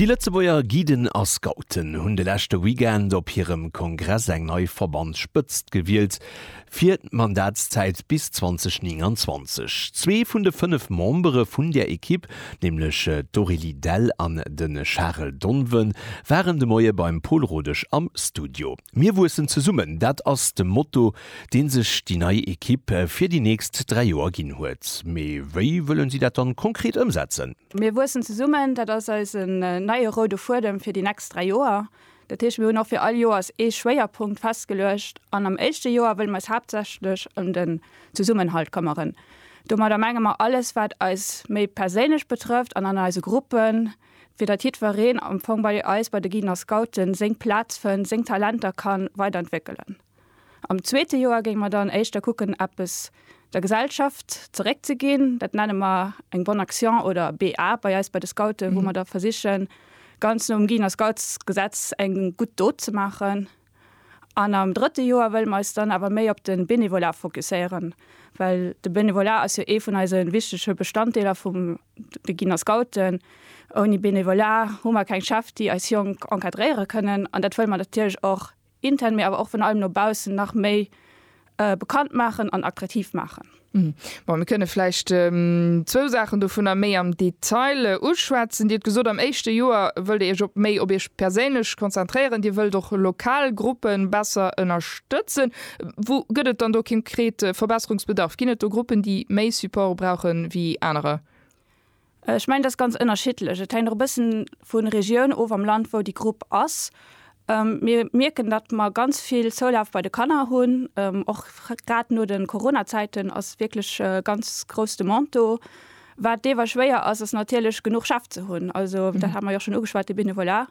Déi Lëtzebuerger Guiden a Scouten hunn de leschte Weekend op hirem Kongress eng nei Verbandsspëtzt gewielt fir d'Mandatszäit bis 2029. Zwee vun de fënnef Membere vun där Ekipp, nämlech d'Aurélie Dell an de Charel Donven, waren de Moie beim Pol Rodesch am Studio. Mir wuessen zesummen, dat ass de Motto, dee sech déi nei Ekipp fir déi nächst dräi Joer ginn huet. Mee wéi wëlle si dat dann konkret ëmsetzen? Mir wuessen zesummen, dat ass eisen neie roude Fuedem fir déi nächst dräi Joer. Dat heescht, mir hunn och fir all Joers ee Schwéierpunkt festgeluecht. An am éischte Joer wëlle mir eis haaptsächlech ëm den Zesummenhalt këmmeren. Domadder menge mer alles, wat eis méi perséinlech betrëfft an an eise Gruppen, fir datt jiddwereen am Fong bei eis bei de Giener Scouten seng Plaz fënnt, seng Talenter kann weider entwéckelen. Am zweete Joer géing mer dann éischter kucken eppes der Gesellschaft zeréck ze ginn, dat nenne mer eng Bonne Action oder BA bei eis bei de Scouten, wou mer da versichen ganz nom Giener Scoutsgesetz eng gutt Dot ze maachen. An am drëtte Joer wëlle mer eis dann awer méi op de Benevolat fokusséieren, well de Benevolat ass jo ee vun eise wichtege Bestanddeeler vum de Giner Scouten. Ouni Benevolat hu mer keng Chef, déi eis Jonk encadréiere kënnen. An dat wëlle mer natierlech och intern, mee awer och virun allem no baussen nach méi bekannt maachen an attraktiv maachen. Bon, mir kënne vläicht zwou Saachen dovunner méi am Detail uschwätzen. Dir hutt gesot, am éischte Joer wëllt Dir Iech op méi op Iech perséinlech konzentréieren. Dir wëllt och lokal Gruppe besser ënnerstëtzen. Wou gëtt et dann do konkret Verbesserungsbedarf? Ginn et do Gruppen, déi méi Support brauche wéi anerer? Ech mengen, dat ass ganz ënnerschiddlech. Et hänkt och e bëssen vu Regioun of am Land, wou déi Grupp ass. Mir mierken, datt mer ganz vill Zoulaf bei de Kanner hunn. Och grad no de Corona-Zäiten ass wierklech e ganz grouss Demande do. Wat deewer schwéier ass, ass natierlech genuch Chef ze hunn. Also dat hat mer jo och schonn ugeschwat, de Benevolat.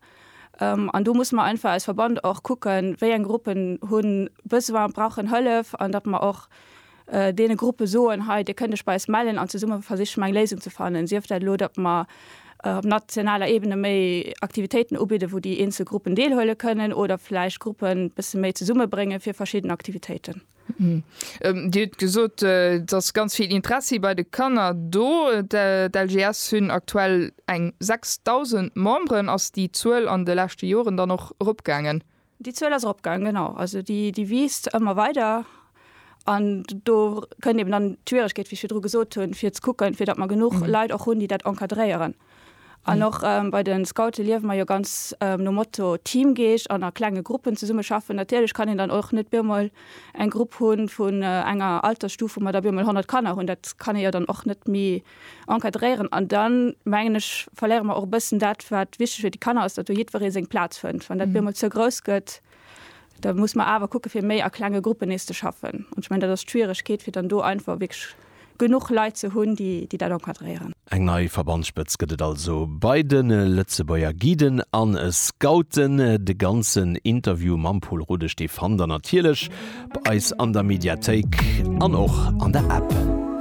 An do musse mer einfach als Verband och kucken, wéi eng Gruppen hu Besoin, brauchen Hëllef, an datt mer och deene Gruppe soen, hei, dir kënnt iech bei eis mellen an zesumme versiche mer eng Léisung ze fannen, sief dat elo, datt mer op nationaler Ebene méi Aktivitéiten ubidde wou déi eenzel Gruppen deelhuele kënnen oder vläicht Gruppen e bësse méi zesummebrénge fir verschidden Aktivitéiten. Dir hutt gesot, et ass ganz vill Interessi bei de Kanner do. D'LGS hunn aktuell eng 6.000 Memberen. Ass déi Zuel an de leschte Joren dann och eropgaangen? Déi Zuel ass eropgaangen, genau. Also déi wiisst ëmmer weider. An do kënnt eben dann d'Schwieregkeet, wéi ech virdru gesot hunn, fir ze kucken, fir datt mer genuch Leit och hunn, déi dat encadréieren. An och bei de Scoute liewe mer jo ganz nom Motto Teamgeescht an a klenge Gruppen zesummeschaffen. Natierlech kann een dann och net op eemol eng Grupp hu vun enger Altersstuf, wou mer da op eemol 100 Kanner hunn. Dat kann ee jo dann och net méi encadréieren an dann mengen ech verléiere mer och e bëssen dat wat wichteg fir déi Kanner ass, datt do jiddweree seng Plaz fënnt. Wann dat bemol ze grouss gëtt, da muss mer awer kucke fir méi a klenge Gruppen nees ze schaffen. An ech mengen dat ass d'Schwieregkeet fir dann do einfach wierklech genuch Leit ze hunn, déi déi dat encadréieren. Eng nei Verbandsspëtz gëtt et also bei de Lëtzebuerger Guiden a Scouten. De ganzen Interview mam Pol Rudesch dee fannt der natierlech bei eis an der Mediathéik an och an der App.